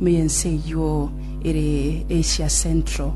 ime y'ense eyio ere Asia Central.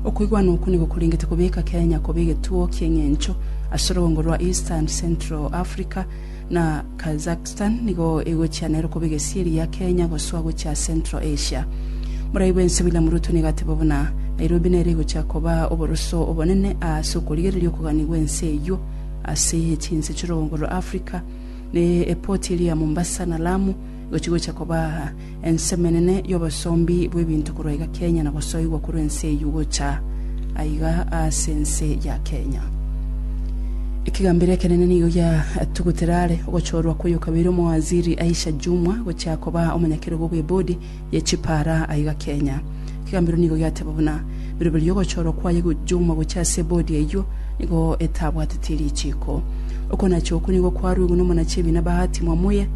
Okoigwana okwo nigo korengete kobeka Kenya koba egetuo ki'eng'encho ase orogongo rwa East and Central Africa, na Kazakhstan nigo egochia nero koba egesieri gia Kenya gosoa gochia Central Asia. Morai bw'ense William Ruto nigo ateba buna Nairobi nere egochia koba oboroso obonene aase okorigereria okogania gw'ense eyio ase chinse chi'orogongo rwa Africa, ne epoti eria ya Mombasa na Lamu egochi gocha koba Ensemenene y'obosombi bw'ebinto korwa iga Kenya na gosoigwa korwa ense eyio gocha aiga ase ense ya Kenya. Ekegambero ekenene nigo giatugutire are ogochorwa kw'oyo kabere Omowaziri Aisha Jumwa gochia koba omonyakerogo bw'ebodi ye chipara aiga Kenya. Kegambero nigo giateba buna biroberi y'ogochorwa kwaye gochomwa gochia ase bodi eyio nigo etabwateti richiiko. Okonacha okwo nigo kwaruigwe n'omonachi ebiina Bahati Mwamuye,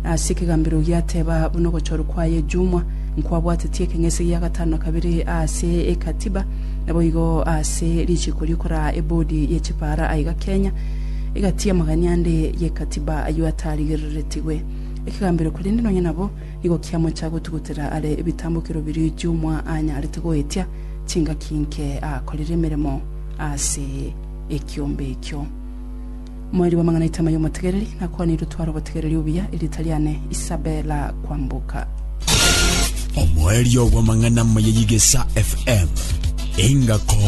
na ase ekegambero giateba buna ogochorwa kwaye chomwa nkwabwateti ekeng'ese gia gatano na kabere aase ekatiba, naboigo aase richiiko riokoraa ebodi ye chipaara aiga Kenya egatiia amagania ande ye katiba ayio ataarigereretigwe ekegambero korende nonya nabo Nigo kiamocha gotugutera are ebitambokero biria Jumwa anyarete goetia chingaki inke akorire emeremo ase ekiombe ekio. Moerio bw'amang'ana Itama y'omotegereri, nakwanire otware obotegereri obuya, erieta riane Isabella Kwamboka. Omoerio bw'amang'ana Mayeyigesa FM, Engako